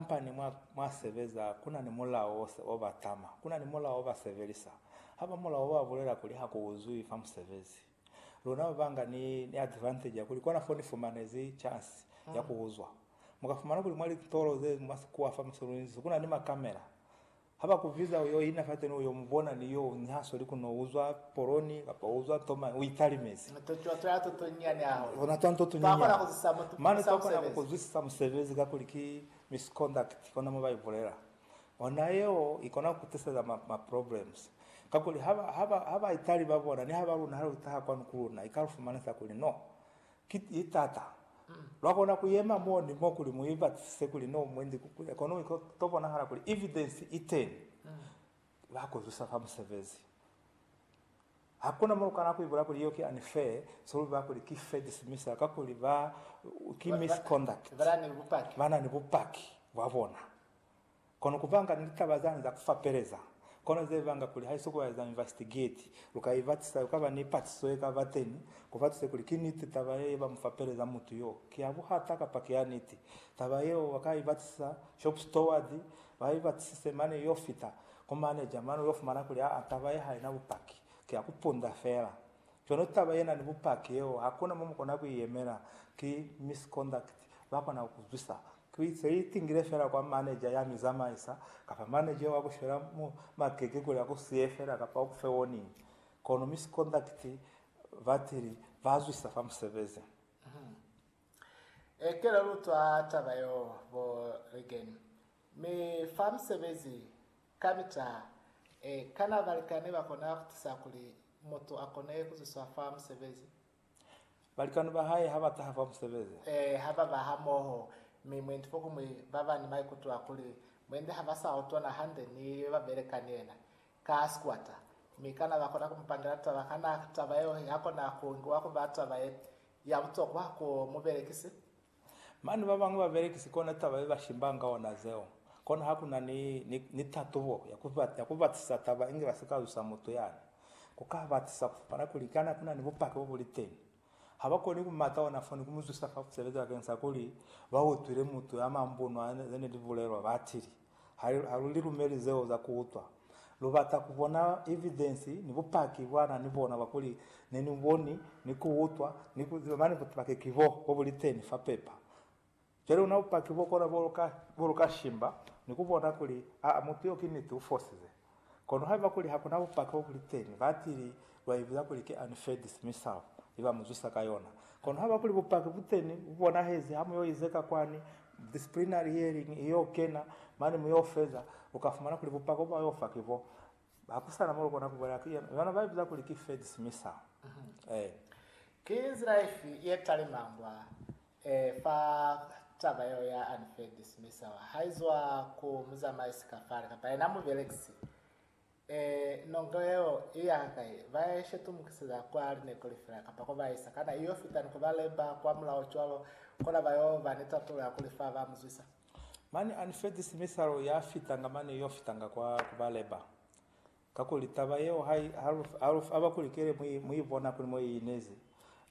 Kamba ni mwa mwa sebeza kuna ni mulao ose o ba tama. Kuna ni mulao o ba sebelisa. Haba mulao wa bulela kuli ha ku uzwi fa musebezi. Luna ba banga ni, ni advantage ya kuli kona fo ni fumanezi chance ya ku uzwa. Muka fumana kuli mwa litolo ze mwa sikuwa fa musi lu inzisi kuna ni ma camera. Haba kubiza uyo ina fateni uyo mubona ni yo unyaha soli kuno uzwa poloni kapa uzwa toma uitalimezi. Mane twa nto tunyinyani mane twa kona ku kuzwisisa musebezi kakuli ki misconduct kona mo ba ibulela ona yeo ikona ku kutiseza ma ma problems kakuli haba haba haba itali babona ni haba luna hali utaha kwanu kuluna ikalufumanisa kuli no Ki tata. Lwa kona ku yema mo ni mo kuli mu i batisise kuli no mu inzi ku kuya, kono iko to bonahala kuli evidence i teni. Ba ku zusa fa musebezi. Hakuna mo lu kana ku ibula kuli yeo ki unfair, so lu ba kuli ki fair dismissal kakuli ba, ki misconduct. Ba na ni bupaki. Ba na ni bupaki bwa bona. Kono kuvanga ni litaba zani za kufapeleza, kono zevanga kuli haiso kueza invastigeti, luka ibatisa yokaba ni patiso yekaba teni, kubatise kuli ki niti taba ye yeba mufapeleza mutu yo ki ya buhata kapa ki ya niti. Taba yeo baka ibatisisa shop steward, ba ibatisise mane yo fita ku manager mane uyo fumana kuli aa taba ye haina bupaki, ki ya kupunda fela. Cwalo taba ye na ni bupaki yeo ha ku na mo mu kona ku i yemela. Ki misconduct. Ba kona ku ku zwisa. Ki se i tingile fela kwa manager ya mi zamaisa, kapa manager yeo a ku shwela makeke kuli a ku siye fela kapa u ku fe warning. Kono misconduct batili ba zwisa fa musebezi. Ee, ki la lutwa taba yeo, bo Regan. Mi fa musebezi Ka bita, e, kana balikani ba kona ku tisa kuli mutu a kone ku zwiswa fa musebezi? Balikani ba hae ha ba taha fa musebezi. E, ha ba ba hamoho, mi mwendi fokumwi ba ba ni maikuto a kuli mwendi ha ba sa utwana hande ni yo ba beleka ni yena ka sikwata. Mi kana ba kona ku mu pangela taba? Kana taba yeo ya kona ku ngiwa ku ba taba ye, ya butokwa ku mubelekisi? Mane ba bañwi babelekisi kona taba ye ba shimbanga ona zeo. Kona ha ku na ni, ni, ni tatubo ya ku, ya ku batisisa taba inge ba si ka zwisa mutu yani. Ku ka batisisa ku fapana kuli kana ku na ni bupaki bo bu li teni. Ha ba koni ku mata ona fo ni ku mu zwisa fa ku sebeza bakeng sa kuli ba utwile mutu ya mambunwa ze ne li bulelwa, ba tili. Ha lu li lumeli zeo za ku utwa, lu bata ku bona evidensi ni bupaki bwa na ni bona bwa kuli ne ni boni, ni ku utwa, ni ku ziba mane bupaki ki bo, bo bu li teni fa pepa. Cwale ona bupaki bo kona bo lu ka shimba ni ku bona kuli, aa, mutu yo ki niti u fosize. Kono haiba kuli hakuna bupaki bo buliteni, batili baibuza kuli ki unfaids mi sao i ba muzwisa ka yona. Kono haiba kuli bupaki buteni, bubonahezi, ha muyo izeka kwani disciplinary hearing iyo kena, mane muyo feza, uka fumana kuli bupaki bo bayo fa ki bo. Hakusana mo lukona kubulela ki yona baibuza kuli ki faids mi sao. Ki nzila ifi ye talima mbwa Ee, fa taba yeo ya unfair dismissal haizwa ku muzamaisi kafale kapa yena mubelekisi, ee, nongo yeo i ya hakai, ba ya ishetumukiseza kwa lineko lifi la kapa ko ba isa, kana i yo fita ni ko ba lemba kwa mulao cwalo, kona ba yo ba ni tatulo ya kuli fa ba mu zwisa? Mane unfair dismissal ya fitanga mane i yo fitanga kwa ku ba lemba. Kakuli taba yeo ha i aba kuli kele mu i bona kuli mo i inezi.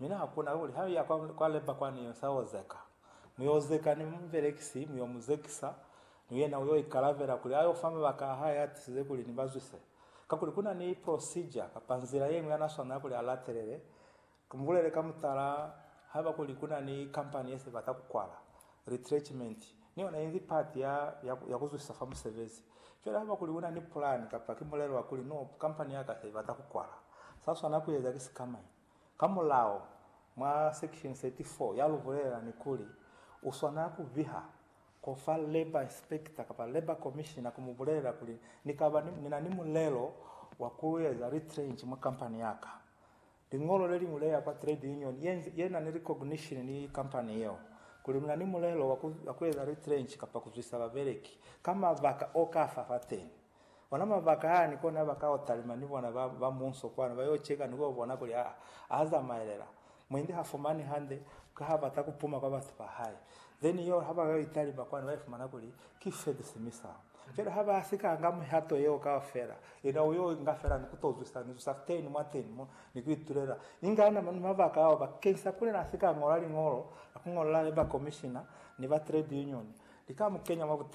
Mi na hakuna kakuli ha mu ya kwa leba kwa ne sa yo zeka. Mu yo zeka ni mubelekisi, mu yo mu zekisa, ni yena u yo ikalavela kuli a yo fa mabaka a hae a tisize kuli ni ba zwise. Kakuli ku na ni procedure kapa nzila ye ñwi ya na swanela kuli a latelele Mubulele ka mutala haiba kuli kuna ni kampani ye sebata kukwala, retrenchment, ni yona inzi pati ya, ya, ya kuzwisisa fa musebezi. Cwale haiba kuli una ni pulani kapa ki mulelo wa kuli, No, kampani yaka se ibata kukwala. Sa swana kueza ki sikamañi? Ka mulao, mwa Section 34 ya lu bulelela ni kuli, u swana ku biha ko fa Labour Inspector kapa Labour Commissioner ku mu bulelela kuli, Ni kaba ni, ni na ni mulelo wa ku eza retrench mwa kampani yaka. Liñolo le liñwi le ya kwa trade union ye, ye na ni recognition ni company yeo, kuli luna ni mulelo wa ku, wa ku eza retrench kapa ku zwisa babeleki ka mabaka o ka fa fateni. Ona mabaka a ni kona ba ka o talima ni bona ba, ba munso kwanu ba yo cheka ni ku yo bona kuli a, a zamaelela. Mwendi ha fumani hande ka ha bata ku puma kwa batu ba hae. Then yeo ha ba ka yo italima kwanu ba ifumana kuli ki fedisimi sa. Fela ha ba si ka nga mihato yeo kaufela, yena u y'o inga fela ni ku t'o zwisa ni zusa teñi mwa teñi mo, ni ku itulela. Inga na mañi mabaka ao bakeñisa kuli n'a si ka ñola liñolo la ku ñolela ba komishina ni ba trade union li ka mu kenya mwa butata?